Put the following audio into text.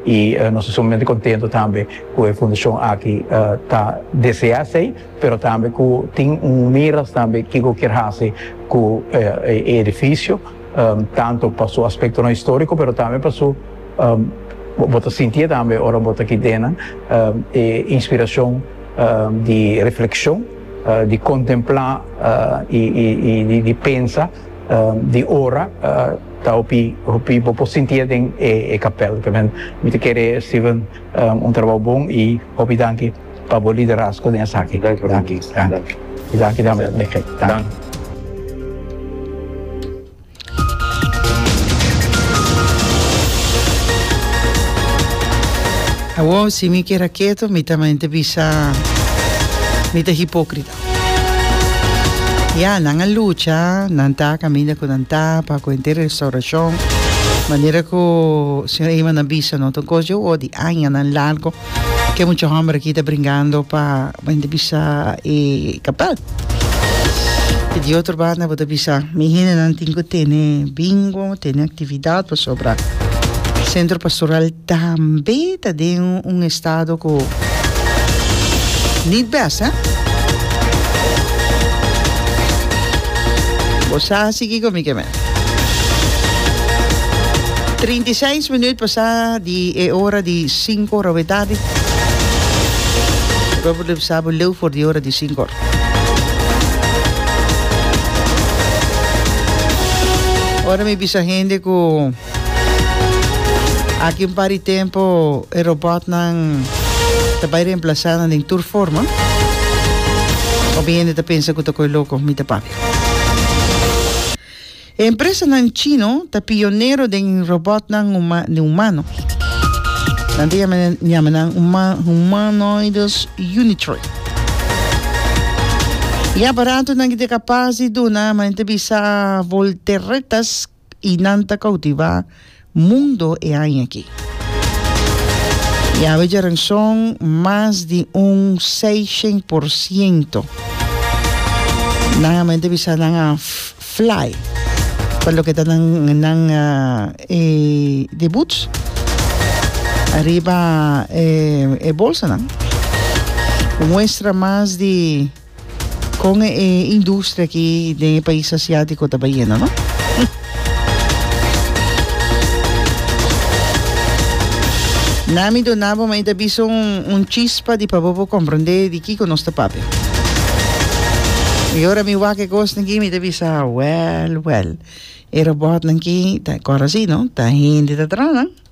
Y nos ta sumamente contento tambe cu e fundacion aki ta desea esey, pero tambe cu tin un miras tambe kico kier haci cu e edificio, tanto pa su aspectonan historico, pero tambe pa su, bo ta sintié tambe ora bo ta aki dennan, e inspiracion di reflexion, di contempla y di pensa, di ora. Ta hopi hopi bo por sintia den e e kapel también mi ta kere Steven un trabou bon y hopi danki pa bo liderazgo den esaki danki y danki tambe Michel danki. Awor si mi keda keto mi ta mente bisa mi ta hipocrita. Ya, nan a lucha, nan ta kaminda ku nan ta pa ku henter restaurashon. Manera ku señor Eyman a bisa no, ta un kos di o di añanan largu ku e mucha hòmber aki ta bringando pa bo henter bisa e kapèl. I di otro banda bo ta bisa mi hende nan tin ku tene bingo, tene aktividat pasobra Sentro Pastoral Tambe ta den un estado cu need best, eh? Bo sa si kico mi ke me. Trinta i seis minuut pasa di e ora di sinku ora awe tardi. Bo por lipsa bo leu for di ora di sinku ora. Ora mi bisa hende cu. Aki un par di tempo e robotnan ta bai reemplazá nan den tur forma. Hopi hende ta pensa ku ta koi loko, mi ta papia. E empresanan chino ta pionero den robotnan huma den humano. Nan ta yama yama nan huma humanoides unitroid. E aparatonan ke ta kapas di duna manera ta bisa volteretas y nan ta cautiva mundo e aña aki. Y awe Jaranson mas di un 600 por ciento. Nan amen te bisa nan a fly pa lo que ta nan, nan uh, e debuts arriba e, e bolsa nan. Muestra mas di Con e industria aki den e pais asiatico ta bayendo, no? Na mi donabo, ma ita bisa un, un chispa di pa bobo comprende di kiko nos ta papi. Y ora mi wak e kos naki, mi ta bisa, well, well. E robot naki, ta, kora si, no? Ta hindi ta tranan.